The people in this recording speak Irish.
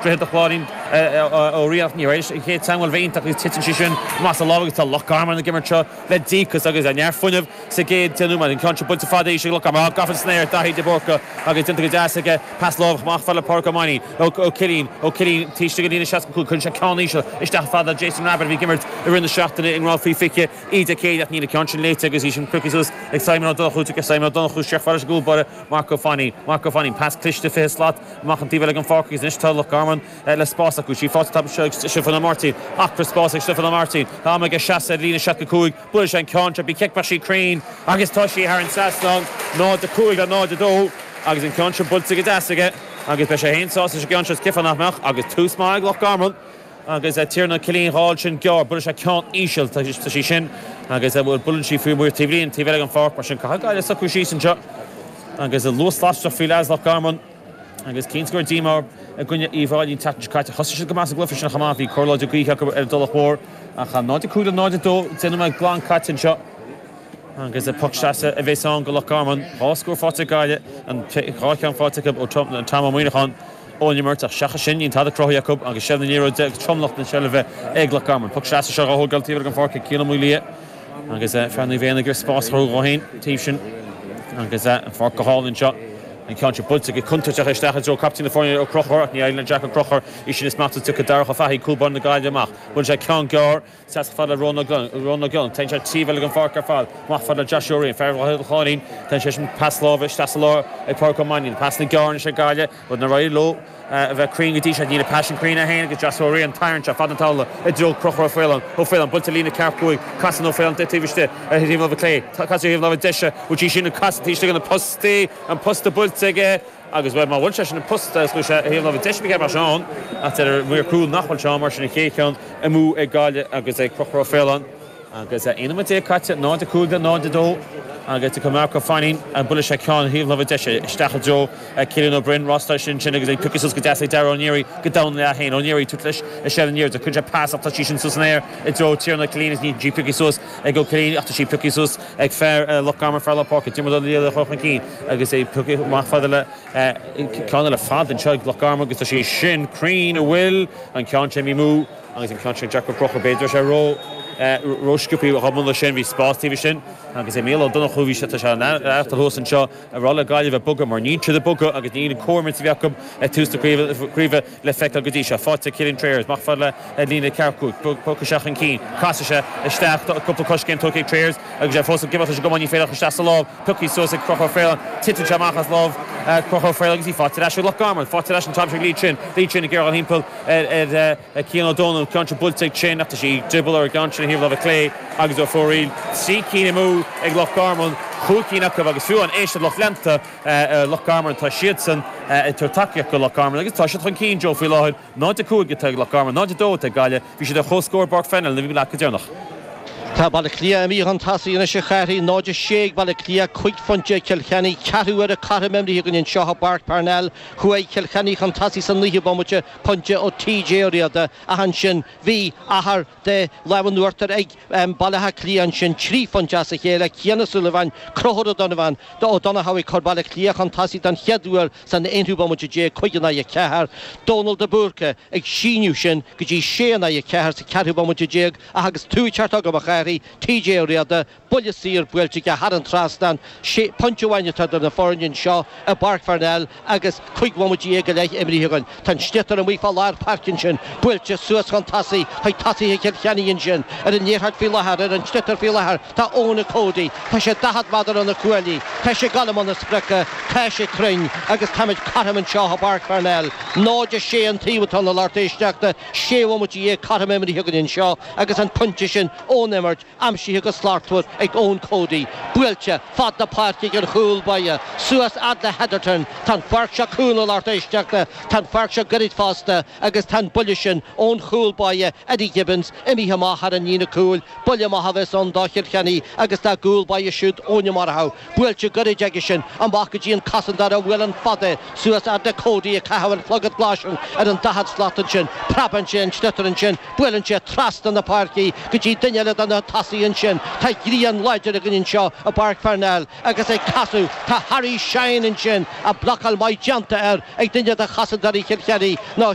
Droichead an Chláirín Ó Riain Ní Éis an chéad teangmháil bheith iontach agus titeann sí sin amach as a lámh agus tá Loch Garman ag imirt seo le díocas agus neart fuinneamh sa gcéad deich nóiméad. An ceann seo buailte fada arís ag Loch Garman ach gafa san aer ag Daithí De Búrca agus déanta go deas aige pas láimh amach fad le Pádraig Ó Mainín. Ó Cillín. Ó Cillín taobh istigh an líne 65 cuireann sé ceann íseal isteach fad le Jason Rabbitte a bhí ag imirt i rith na seachtaine i ngrád faoi 20 Dé Céadaoin ach níl an ceann sin léite aige agus í sin prioctha suas ag Simon Ó Donnchú. Tiocfaidh Simon Ó Donnchú isteach fad leis an gcúl báire Marc Ó Fainín, Marc Ó Fainín, pas cliste 20 slat amach an taobh eile den pháirc agus anois tá Loch Garman le spás acu. Sí faighte anseo ag Stiofán Ó Máirtín. Acraí spáis ag Stiofán Ó Máirtín. Tá am aige seasamh ar líne 65. Buailfidh sé an ceann seo. Bhí cic maith sí cruinn agus tá sí thar an trasnán. 0-5 le 0-2 agus an ceann seo buailte go deas aige agus beidh sé féin sásta leis an gceann seo. Is cic fánach amach agus tús maith ag Loch Garman. Agus a Tiarnán Ó Cillín dhá fáil sin gearr, buailfidh sé ceann íseal. Tá sí sin agus a' buaileann sí faoi amuigh ar an taobhlíne, taobh eile gon pháirc, mar sin caithfidh Gaillimh socrú síos anseo agus an luas lasrach faoi láthair ag Loch Garman. Agus cinnte go leor díomá i gcoinne Uíbh Fháilí an tseachtain seo caite. Thosaigh siad go maith sa gcluife sin, ach amáin bhí cóir láidir gaoithe acu ar an dTulach Mhór. Ach 0-5 le 0-2 deich nóiméad glan caite anseo. Agus is poc sleasa a bhéas ann go Loch Garman. Dhá scór fáite ag Gaillimh, an dhá cheann fáite acu ó Tom Ó Muineacháin. ón imirt ach seachas sin níl tada cruthaithe acu agus seilbh na liathróide agus tromlach na seilbhe ag Loch Garman. Poc sleasa seo dhá thógáil taobh amuigh den pháirc ag Cian Ó Maolmhuaidh agus fear Naomh Éanna ar spás a chruthú dhó féin taobh sin agus an pháirc go hálainn anseo. An ceann seo buailte go contúirteach isteach i dtreo captaen na foirne, Ó Conchúir, ach ní éiríonn le Jack Ó Conchúir í sin a smachtú, tiocfaidh Darach Ó Fathaigh, cúl báire na Gaillimhe, amach. Buaileann sé ceann gearr. Seasfadh fad le Rónán Glennon. Téann sé taobh eile gon pháirc ar fad. Amach fad le Josh Ó Riain. Fear Dhroichead an Chláirín. Tugann sé sin pas láimhe isteach sa lár ag Pádraig Ó Mainnín. Pasanna gearra seo ag Gaillimh níor éirigh leo a bheith cruinn go dtí seo. Níl an pas sin cruinn é féin ag Josh Ó Riain. Tarraing sé fad na taobhlíne i dtreo Conchúr Ó Faoláin. Ó Faoláin, bainte líne ceathracha cúig. Casann Ó Faoláin don taobh istigh ar thaobh láimhe clé. Casadh ar thaobh láimhe deise go dtí sin agus casadh taobh istigh de na postaí. An posta buailte aige. Agus bhuel, má bhuail sé sin an posta, is chuaigh sé sin ar thaobh na láimhe deise, b'fhéidir mar sin ann, ach deir an maor cúil nach bhfuil sé ann, mar sin an chéad cheann amú ag Gaillimh agus ag Conchúr Ó Faoláin. Agus 11 nóiméad caite, 0-5 le 0-2, agus ag Marc Ó Fainín, buailfidh sé ceann thaobh na láimhe deise isteach i dtreo Cillian Ó Broin, Ross Lyster ansin agus í pioctha suas go deas ag Dara Ó Neary go domhain ina leath féin. Ó Neary ag tabhairt leis i seilbh na liathróide. Cuireann sé pas ach tá sí sin suas san aer i dtreo Tiarnán Ó Cillín níl sí pioctha suas ag Ó Cillín ach tá sí pioctha suas ag fear Loch Garman, fear lár na páirce, Diarmuid Ó Laoghaire a chur chun cinn agus é pioctha amach fad le ceann eile fada anseo ag Loch Garman agus tá sé sin cruinn an bhfuil an ceann sin imithe amú agus an ceann sin deacair crochadh b'fhéidir tá sé ró ró sciobthaí a dúirt muid ansin bhí spás taobh istigh agus é Mícheál Ó Donnchú bhí sé tá sé an fhearthainn thuas anseo ag rá le Gaillimh bogadh mar níl siad ag bogadh agus níl an cumas a bhí acu ag tús na craoibhe le feiceáil go dtí seo. Faighte Cillian Trayers. Mac fear le líne leathchúil. Pioc isteach chun cinn. Casfaidh sé isteach cúpla coiscéim tógtha ag Trayers agus é fós ag gabháil leis an gcamán. Ní féidir ach isteach sa lámh. Pioctha suas ag Conchúr Ó Faoláin. Titeann sé amach as lámh Chonchúir Ó Faoláin go dtí faighte ar ais ag Loch Garman. Faighte ar ais an t-am seo ag Lee Chin. Lee Chin ag iarraidh dhul thimpeall ar Cian Ó Dónaill. Ceann seo buailte ag Chin ach tá sí ag drioball ar an gceann sin ar thaobh láimhe clé agus ar fóraoil. Trí cinn amú ag Loch Garman. Cúig cinn acu agus fiú an éisteacht lucht leanta. ar Loch Garman. Tá siadsan ag tabhairt tacaíocht do Loch Garman agus tá siad chun cinn, Joe, faoi láthair. 0-5 atá ag Loch Garman, 0-2 atá ag Gaillimh. Bhí siad ar chomhscór i bPáirc Pharnell nuair a bhí muid leat go deireanach. Tá Baile Cliath imithe chun tosaigh anois a Chárthaigh, 0-6 ag Baile Cliath, cúig phointe ag Cill Chainnigh. Ceathrú uaire cothrom imrithe againn anseo i bPáirc Parnell. Chuaigh Cill Chainnigh chun tosaigh sa naoú bomaite, pointe ó T.J. Ó Riada, ach ansin bhí achar. de láimh an uachtair ag Baile Átha Cliath ansin trí phointe as a chéile, Cian Ó Súilleabháin, Conchúr Ó Donnabháin nó Ó Donnchadha ag cur Baile Átha Cliath chun tosaigh don chéad uair san aonú bomaite déag, 5 in aghaidh 4, Dónal de Búrca ag síneadh sin go dtí 6 in aghaidh 4 sa ceathrú bomaite déag ach agus tú ag teacht chugam a Chárthaigh, TJ Ó Riada, Buille saor buailte aige thar an trasnán. Sé pointe amháin atá idir na foirne anseo i bPáirc Pharnell agus cúig bhomaite dhéag go leith imrithe againn. Tá an sliotar amuigh fá lár páirce ansin. Buailte suas chun tosaigh chuig tosaithe Chill Chainnigh ansin. Ar an liathróid faoi láthair, ar an sliotar faoi láthair, tá Eoin Cody. Tá sé daichead meadar ó na cuaillí. Tá sé ag dul i mbun a spriocadh. Tá sé cruinn agus táimid cothrom anseo i bPáirc Pharnell. 0-6 an taobh atá ann a lucht éisteachta. Sé bhomaite dhéag cothrom imrithe againn anseo agus an pointe sin ón imirt. Aimsithe go slachtmhar ag Eoin Cody. Buailte fad na páirce ag an chúl báire. Suas fhad le Hetherton. Tá an pháirc seo cúng a lucht éisteachta. Tá an pháirc seo goirid fosta agus tá an buille sin ón chúl báire, Eddie Gibbons, imithe amach thar an líne cúil. Buille amach a bheas ann do Chill Chainnigh agus dá gcúl báire siúd, Eoin Ó Murchú. Buailte goirid aigesean amach go dtí an cosantóir a bhuaileann fada suas fhad le Cody ag caitheamh an chlogaid ghlais ar an daichead slat. Ansin preabann sé an sliotar. Ansin buaileann sé trasna na páirce go dtí duine eile de na tosaithe. Ansin tá grian láidir againn anseo i bPáirc Pharnell agus ag casadh tá Harry Shine. Ansin a blocáil maith déanta air ag duine de chosantóirí Chill Chainnigh nó